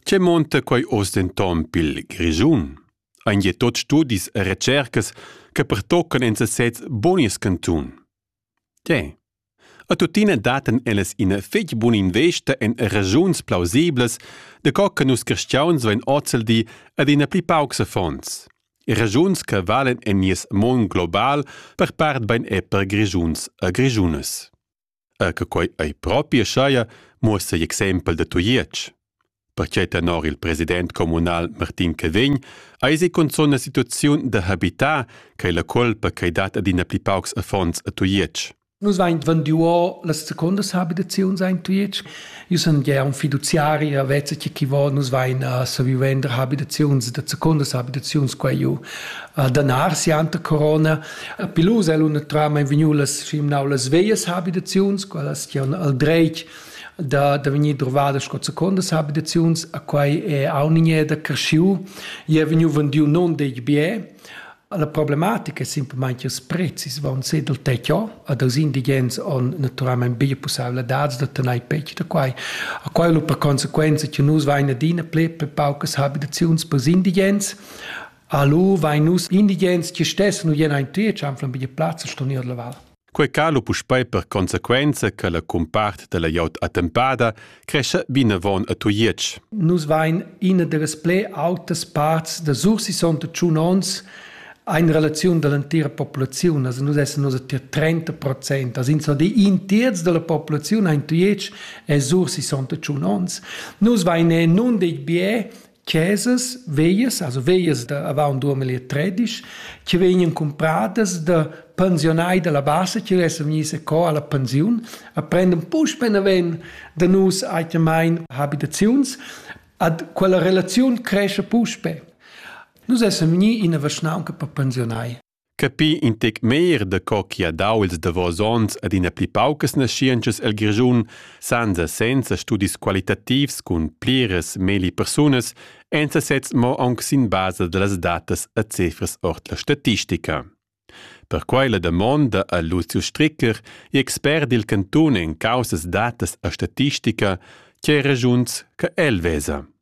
Che monta quei oz denton pil Grischun? Ein je tot studis e recercas che pertoccan en sesez bunis cantun? Tge? A tuttina daten ellas ina fetg buna investa en regiuns plausiblas, de co che nus cristians vein ozzeldi ad ina pli paucs fonds. Regiuns che valen en nies mon global per part bein è per Grigiuns e Grigiunas. er che quei ei propi schaia, muossa igl exempel da Tujetsch. Perquei tenor il president communal Martin Cavegn eisi cunzun una situaziun da habitar che la colpa che dat adina pli paucs affons a Tujetsch. Nus vein venduo las secondas habitaziuns ein Tujetsch Io sun gia un fiduziari, a vezza chi chi vo nus vain a saviu vender habitaziuns da secundas habitaziuns qua giù a Danar sianta corona. A Pilus el una trama in vegnu las scimnau las veias habitaziuns, quellas chi on al dreit da, da vegnir drovadas sco secondas habitaziuns, a quai è aunigné da cresciu, i è vegnu vendiu non deg biè, La problematica è simplamain che ils prezis van se dal tetto ad els indigens on naturalmente bia pussabladats da tener petg da quai. A quai per conseguenza che nus vain adina ple per paucas abitaziuns per indigens. Allo vain nus indigens che stessen u jena in triec anflan bia plazza sto ner la val. Quei calo puspei per consequenza che la cumpart dalla glieud attempada crescha vinavon a Tujetsch. Nus vein ina dallas pli autas parts da Sursison da tschun onns in relaziun dall'entira populaziun, also nus essen also tier 30 Prozent, also insomma in terz dalla populaziun in Tujetsch è Sursison da tschun onns. Nus vein nun dei bie chesas veias, also veias da avant 2013, che vegnan compradas da pensionai dalla bassa che vessen vegni se co alla pensiun, a prendem puspe naven da nus aitamain habitaziuns, ad quella relaziun cresce puspe. Nus essen vegni in a vaschnaunca per pensionai. Capir in tec meglier da co chi ha dau ils davos ons ad ina pli paucas naschientschas el Grischun senza senza studis qualitativs cun pliras meli persunas ein sesezs mo aunc sin basa dallas datas e cifras ord la statistica. Perquei la damonda a Lucio Stricker, expert dil cantun en caussas datas e statistica, che regiuns che el vesa.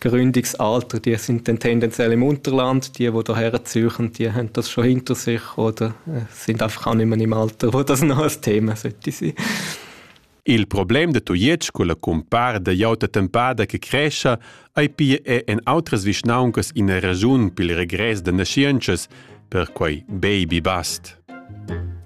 Gründigs Alter, die sind dann tendenziell im Unterland, die, die hierher ziehen, die haben das schon hinter sich oder äh, sind einfach auch nicht mehr im Alter, wo das noch ein Thema sollte sein. Il problem de Tujetsch con la compar da iauta tempada che crescia ei pia è en outras vischnauncas ina ragiun pil regress de nascienças per quei baby bust.